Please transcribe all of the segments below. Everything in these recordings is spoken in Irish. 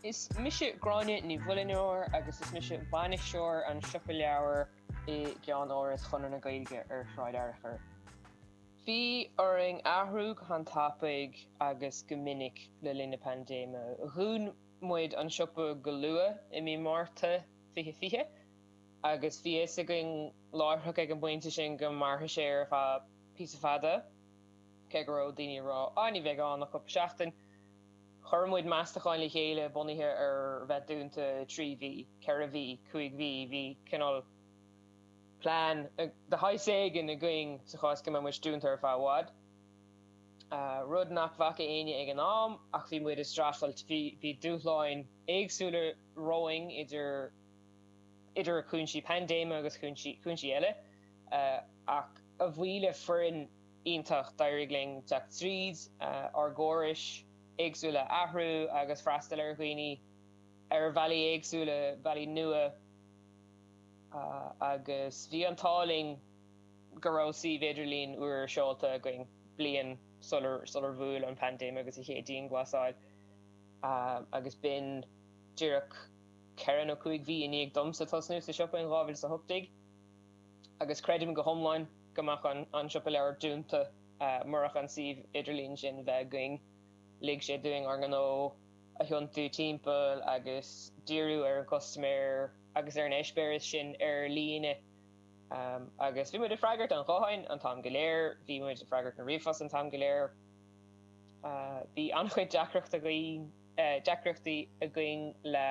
Is mise Gráinne Ní Mhuilneoir agus is mise bainisteoir an Siopa Leabhar i gCeann-Áras Chonradh na Gaeilge ar Shráid Fhearchair. Bhí orainn athrú go han tapaidh agus go minic le linn na paindéime. Dhún muid an siopa go luath i mí Márta 2020 agus bhí fhios againn láithreach ag an bpointe sin go mairfeadh sé ar feadh píosa fada. Cé go raibh daoine ag rá, ah ní bheidh ann ach cúpla seachtain, chuir muid meastacháin le chéile bunaithe ar bheith dúnta trí mhí, ceithre mhí, cúig mhí. Bhí cineál plean de shaghas éigin againn sa chás go mbeadh muid dúnta ar feadh i bhfad, rud nach bhfaca éinne ag an am, ach bhí muid ag streachailt, bhí dúshláin éagsúla romhainn idir cúinsí paindéime agus cúinsí eile. ach a bhuí le foireann iontach d'éirigh linn teacht tríd ár gcórais éagsúla, athrú agus freastal ar dhaoine ar bhealaí éagsúla, bealaí nua, agus bhí an t-ádh linn go raibh suíomh idirlín úr seolta againn bliain sular bhuail an paindéim agus an chéad dianghlasáil, agus b'in díreach ceithre nó cúig mhí i ndiaidh domsa tosnú sa siopa in 2018. agus creidim go hiomlán go mbeadh an Siopa Leabhar dúnta murach an suíomh idirlín sin bheith againn. Lig sé dúinn ár ngnó a thiontú timpeall agus díriú ar an gcustaiméir agus ar an eispéireas sin ar líne. Agus bhí muid ag freagairt an ghutháin an t-am go léir, bhí muid ag freagairt an ríomhphost an t-am go léir. Bhí an-chuid deacrachtaí againn le.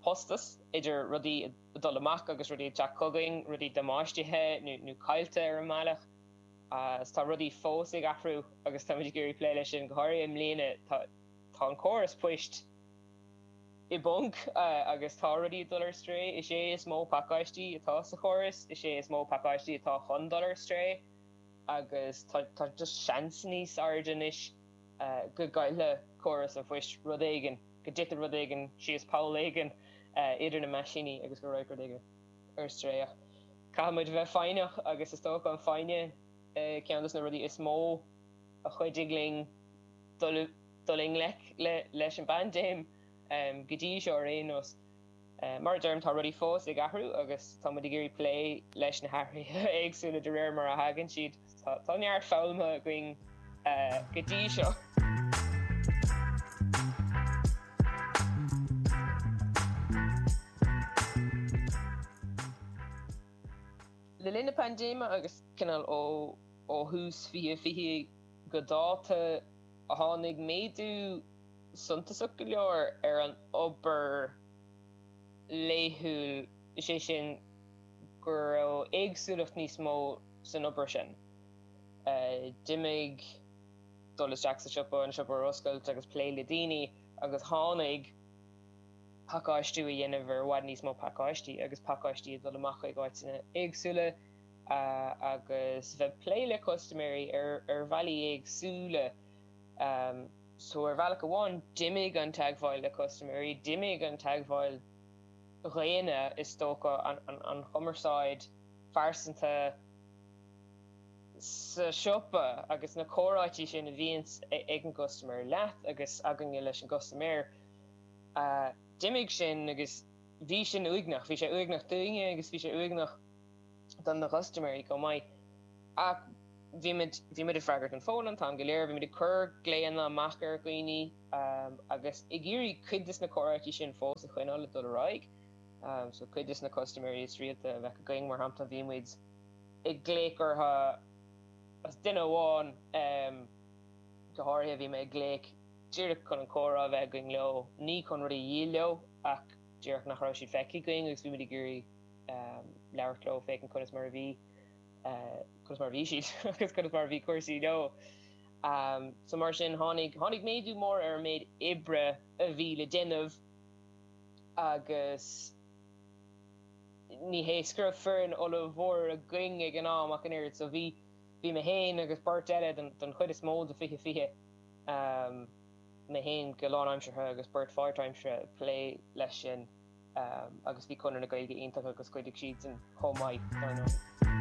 postas, idir rudaí ag dul amach agus rudaí ag teacht chugainn, rudaí damáistithe nó caillte ar an mbealach. Is tá rudaí fós ag athrú agus tá muid ag iarraidh plé leis sin. Go háirithe i mbliana, tá an córas poist i bponc agus tá rudaí ag dul ar strae. Is é is mó pacáistí atá sa chóras, is é is mó pacáistí atá chun dul ar strae agus tá just seans níos airde anois. go gcaillfidh córas an phoist rud éigin, go dtitfidh rud éigin síos poll éigin idir na meaisíní agus go rachaidh rud éigin ar strae. Ach caithfidh muid a bheith foighneach agus is dócha an foighne ceann de na rudaí is mó a chuidigh linn dul i ngleic leis an bpaindéim, go dtí seo ar aon nós. Mar a deirim, tá rudaí fós ag athrú agus tá muid ag iarraidh plé leis na hathruithe éagsúla de réir mar a thagann siad. Tá neart foghlamtha againn go dtí seo. Le linn na paindéime agus cineál ó thús 2020 go dáta, tháinig méadú suntasach go leor ar an obair laethúil, is é sin go raibh éagsúlacht níos mó san obair sin. D'imigh dul isteach sa siopa, an siopa a oscailt agus plé le daoine, agus tháinig pacáistí a dhéanamh ar i bhfad níos mó pacáistí, agus pacáistí ag dul amach chuig áiteanna éagsúla, agus bheith ag plé le custaiméirí ar bhealaí éagsúla. So ar bhealach amháin d'imigh an teagmháil le custaiméirí, d'imigh an teagmháil dhaonna is dócha, an chumarsáid phearsanta sa siopa agus na comhráití sin a bhíonns ag an gcustaiméir leat agus againne leis an gcustaiméir, d'imigh sin agus bhí sin uaigneach, bhí sé uaigneach dúinne agus bhí sé uaigneach. do na custaiméirí chomh maith. Ach bhí muid, bhí muid ag freagairt an fón an t-am go léir, bhí muid ag cur glaonna amach ar dhaoine agus ag iarraidh cuid de na comhráití sin fós a choinneáil ag dul ar aghaidh. So cuid de na custaiméirí is rialta a bheadh againn, mar shampla, bhí muid ag glaoch orthu is duine amháin go háirithe, bhí mé ag glaoch díreach chun an comhrá a bheith againn leo, ní chun rud a dhíol leo ach díreach nach raibh siad feicthe againn agus bhí muid ag iarraidh. labhairt leo, féachaint conas mar a bhí, conas mar a bhí siad agus conas mar a bhí cúrsaí leo. So mar sin tháinig, tháinig méadú mór ar an méid oibre a bhí le déanamh agus ní hé go raibh foireann ollmhór againn ag an am ach an oiread. So bhí, bhí mé féin agus beirt eile, den, den chuid is mó de fiche fiche, mé féin go lánaimseartha agus beirt pháirtaimseartha ag plé leis sin. agus bhí Conradh na Gaeilge iontach agus chuidigh siadsan chomh maith, dar ndóigh.